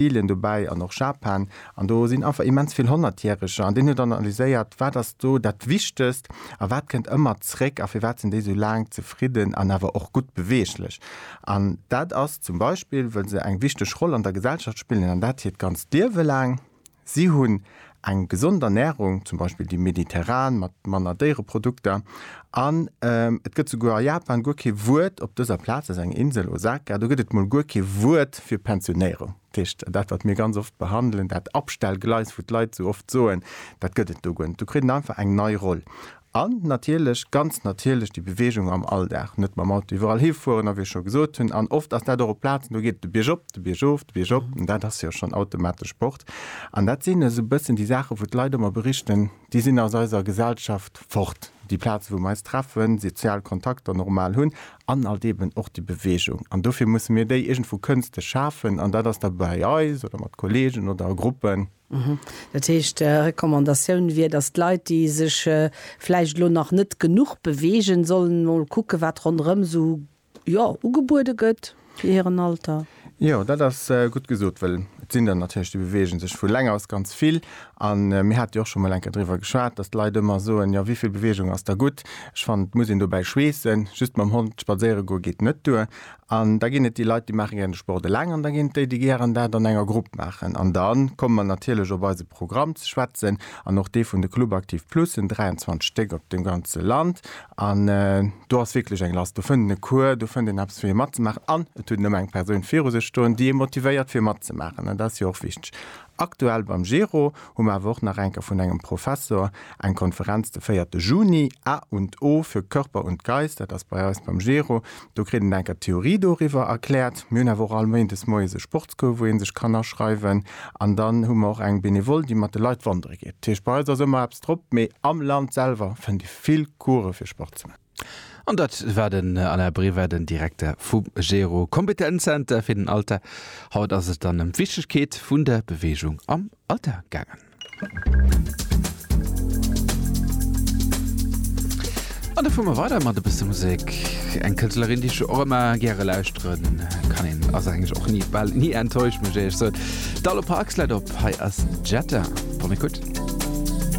Brasilien dobäi an och Japan, an do sinn einfach immens vill Honnertjäreger, an deen huet dann analyséiert, wat ass do dat Wichtegst a wat kënnt ëmmer zréck a firwat sinn déi esou laang zefridden an awer och gutt beweeglech. An dat ass zum Beispill, well se eng wichteg Roll an der Gesellschaft spillen, an dat hiert ganzt Liewe laang. Si hunn. Eng gesond Ernärung, zum Beispill déi mediterran mat manner Déiereprodukter. An et gëtt souguer a Japan guer kee Wuert op dëser Plaz, dat ass eng Insel, Osaka, do gëtt et mol guer kee Wuert fir Pensionéierung. Dat heescht, dat wat mir ganz oft behandelen, dat Abstellgleis, wou d'Leit esou oft soen, dat gëtt et do guer net. Do kritt et einfach eng nei Roll. An natierlech, ganz natierlech, déi Beweegung am Alldag, net mam Auto iwwerall hifueren, a wéi ech scho gesot hunn, an oft ass dat och op Plazen, do geet et de Bierg op, de Bierg of, de Bierg op, an dat ass jo schonn automatesch Sport. An dat sinn esou e bëssen déi Saachen, wou d'Leit ëmmer berichten, déi sinn aus eiser Gesellschaft fort, déi Plazen, wou mer eis treffen, sozial Kontakter normal hunn, an alt eeben och déi Beweegung. An dofir musse mir déi iergendwou kënsteg schafen, an dat ass da bei eis oder mat Kolleegen oder a Gruppen. Dat heescht, Recommandatioun wier, datt d'Leit, déi sech vläicht elo nach net genuch beweegen, sollen emol kucken, wat ronderëm esou, jo, ugebuede gëtt fir hiren Alter? Jo, dat ass gutt gesot, well et sinn der natierlech, déi beweegen sech vu länge aus ganz vill. A mir hate jo och scho mol enker driwwer geschwat, datt d'Leit ëmmer soen, jo, wéi vill Beweegung ass da gutt? Ech fannen, et muss een dobäi schweessen. Just mam Hond spadséiere goe geet net duer. An da ginn et déi Leit, déi maache gären de Sport eleng an da ginn et déi, déi gären dat an enger Grupp maachen. An da komme mer natierlech op eise Programm ze schwätzen an och dee vun de Club Active Plus, en 23 Stéck op dem ganze Land. An do ass wierklech eng Last. Do fënnt en e Cours, do fënnt een eppes fir hie matzemaachen an et huet en ëmmer eng Persoun viru sech stoen, déi e motivéiert fir matzemaachen an dat ass jo och wichteg. Aktuell beim Gero hu mer awer och nach enke vun engem Professor eng Konferenz de véierte Juni, A und O für Körper und Geist, dat ass bei eis beim Gero, do kritt en enker d'Theorie doriwwer erkläert. Mir hunn awer och all Méindes moies e Sportscours, wou ee sech kann aschreiwen. An dann hu mer och eng Benevole, déi mat de Leit wandere geet. Dat heescht, bei eis ass ëmmer eppes drop, mee am Land selwer fënnt ee vill Coursë fir Sport ze man. An dat war den Alain Brever, den Direkter vum Gero Kompetenzzenter fir den Alter. Haut ass et dann ëm d'Wichtegkeet vun der Beweegung am Alter gaangen. An da fuere mer weider mat e bësse Musek. Eng Kënschtlerin, déi ech jo och ëmmer gäre lauschteren kann. Een ass eigentlech och ni, bal ni enttäuscht, muss ech éierlech soen. D'Allo Parks läit op. Hei ass Jetta. Kommt gutt.